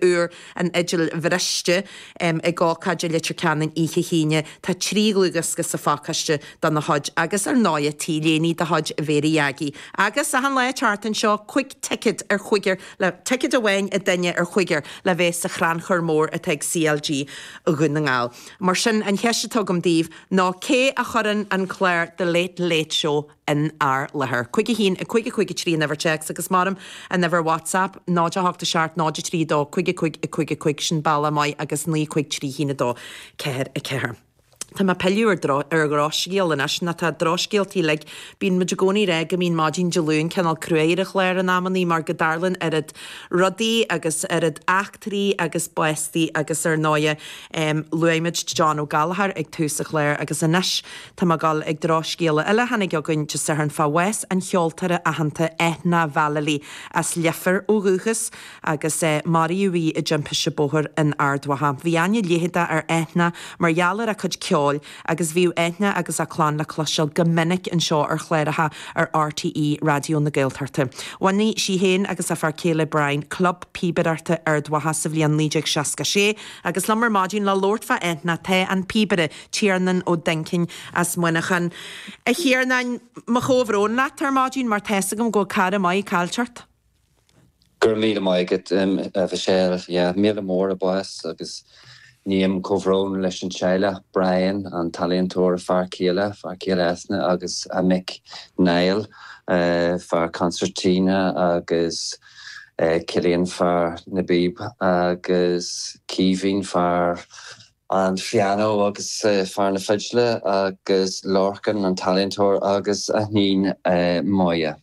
uair an fhidil bhriste ag ócáid i Leitir Ceanainn oíche hAoine. Tá trí dhlúthdhiosca sa phacáiste dena chuid agus ar ndóigh t-léiní de chuid Mhéaraí Aggie. Agus achan lá an tseachtain seo, cúig ticéad ar chúigear le ticéad amháin ag duine ar chúigear le bheith sa Chrannchur Mór atá ag CLG Dhún na nGall. Mar sin an cheist atá agam daoibh ná cé a chuireann an clár The Late Late Show in ár láthair. Cúig a haon, a cúig, a cúig a trí an uimhir téacs agus ar maidin an uimhir WhatsApp, 0 8 a seacht 0 3 2 cúig a cúig, a cúig, a cúig sin bealach maith agus naoi cúig trí haon a dó ceathair a ceathair. Tá mé ag pilleadh ar dro, ar dhrochscéal anois, ná tá drochscéaltaí uilig, bíonn muid i gcónaí ag rá go mbíonn maidin Dé Luain cineál cruaidh ar an chlár in amannaí mar go dtarlaíonn oiread rudaí agus oiread eachtraí agus bástaí agus ar ndóighe luaigh muid John Ó Gallchóir ag tús an chláir agus anois Tá mé ag gabháil chuig drochscéala eile a tháinig chugainn Dé Sathairn fá bhás an cheoltóra aitheanta Eithne Vallely, as Leifear ó dhúchas, agus maraíodh í i dtimpiste bóthair in Ard Mhacha. Bhí aithne leitheadach ar Eithne mar gheall ar a cuid ceoil agus bhíodh Eithne agus a clann le cloisteáil go minic anseo ar chláracha ar RTÉ Raidió na Gaeltachta. Bhunaigh sí féin agus a fear céile Brian Club Píobaireachta Ard Mhacha sa bhliain 1966 agus liom ar maidin le labhairt fá Eithne tá an píobaire, Tiarnán Ó Duinnchinn as Muineachán. A Thiarnáin, mo chomhbhrón leat ar maidin mar tá's agam go bhfuil cara maith caillte ort. Go raibh míle maith agat a Mhichelle, yeah, méala mór a bás agus ním comhbhrón leis an teaghlach, Brian, an t-ealaíontóir, a fear céile, fear céile Eithne agus a mic Niall, fear concertina agus Cillian, fear na bpíob agus Caoimhín, fear an phianó agus fear na fidle agus Lorcán an t-ealaíontóir agus a hiníon Máire.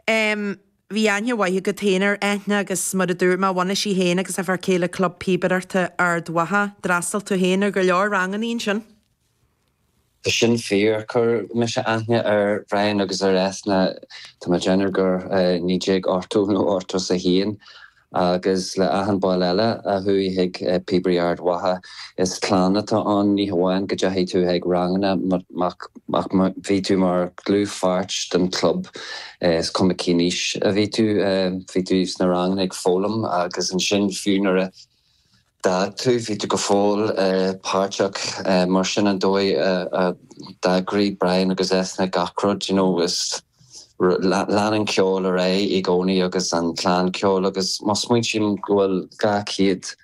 Em, bhí aithne mhaith agat féin ar Eithne agus mar a dúirt mé bhunaigh sí féin agus a fear céile Club Píobaireachta Ard Mhacha, d'fhreastail tú féin ar go leor ranganna ansin. Tá sin fíor. Chuir mise aithne ar Bhrian agus ar Eithne tá mé ag déanamh gur i 1980 nó 81 agus le achan ball eile a chuaigh chuig Píobairí Ard Mhacha is clann atá ann. Ní hamháin go dteachaigh tú chuig ranganna ach bhí tú mar dhlúthpháirt den chlub is cuma cén aois a bhí tú, bhí tú sna ranganna ag foghlaim agus ansin fiú nuair a d'fhág tú bhí tú go fóill páirteach mar sin an dóigh a d'eagraigh Brian agus Eithne gach rud you know is lean an ceol ar aghaidh i gcónaí agus an clann ceoil agus má smaointím go bhfuil 200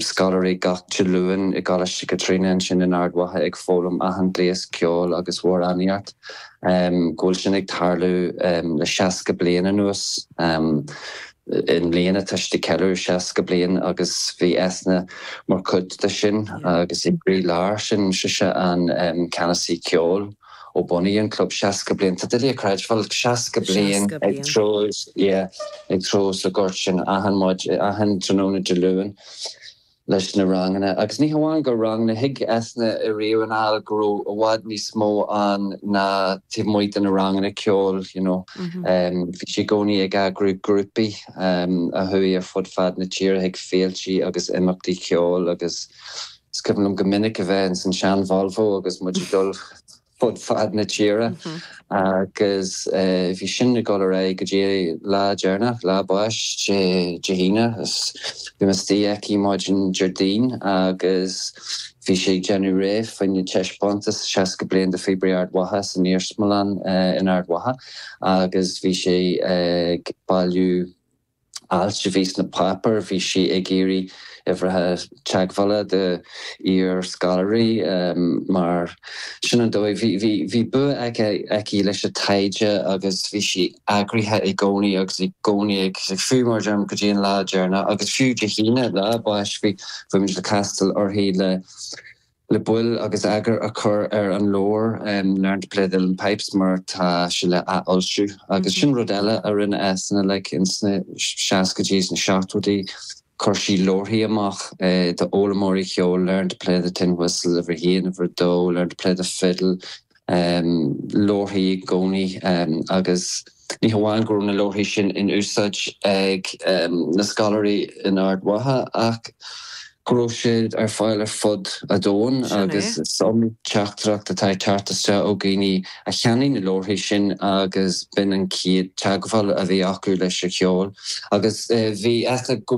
scoláirí gach Dé Luain i gColáiste Chaitríona ansin in Ard Mhacha ag foghlaim achan gléas ceoil agus mór an éacht go bhfuil sin ag tarlú le 60 bliain anuas. I mbliana tá siad ag ceiliúradh 60 bliain agus bhí Eithne mar chuid de sin agus i gcroílár sin sise an ceannasaí ceoil ó bunaíodh an club 60 bliain. Tá sé doiligh a chreidbheáil, 60 bliain ag treabhadh, yeah, ag treabhadh sa ghort sin achan maidin, achan tráthnóna Dé Luain. leis na ranganna. Agus ní hamháin gur ranganna, thuig Eithne ariamh anall go raibh i bhfad níos mó ann taobh amuigh de na ranganna ceoil you know. Bhí sí i gcónaí ag eagrú grúpaí a chuaigh ar fud fad na tíre chuig féiltí agus imeachtaí ceoil agus is cuimhin liom go minic a bheith ins an sean Volvo agus muid ag dul fud fad na tíre agus bhí sin ag dul ar aghaidh go dtí an lá deireanach, lá a báis Dé hAoine. Bhí mé istigh aici maidin Déardaoin agus bhí sí ag déanamh réidh fá choinne taispeántas 60 bliain de Phíobairí Ard Mhacha san iarsmalann in Ard Mhacha agus bhí sí ag bailiú, ailt a bhí sna páipéir, bhí sí ag iarraidh uimhrithe teagmhála d'iar-scoláirí mar sin an dóigh. Bhí bua aici leis an taighde agus bhí sí eagraithe i gcónaí agus i gcónaí ag fiú, mar a deir mé, go dtí an lá deireanach. Agus fiú Dé hAoine, lá a báis, bhí muid le castáil uirthi le Le bail agus eagar a chur ar an leabhar Learn to Play the Uilleann Pipes mar tá sé le athfhoilsiú agus sin rud eile a rinne Eithne like in sna seascaidí is na seachtóidí, chuir sí leabharthaí amach d'fhoghlaimeoirí ceoil Learn to Play the Tin Whistle uimhir a haon, uimhir a dó, Learn to Play the Fiddle, leabharthaí i gcónaí agus ní hamháin go raibh na leabharthaí sin in úsáid ag na scoláirí in Ard Mhacha ach go raibh siad ar fáil ar fud an domhain agus is iomaí teachtaireacht atá ag teacht isteach ó dhaoine a cheannaigh na leabharthaí sin agus b'in an chéad teagmháil a bhí acu leis an cheol agus bhí Eithne go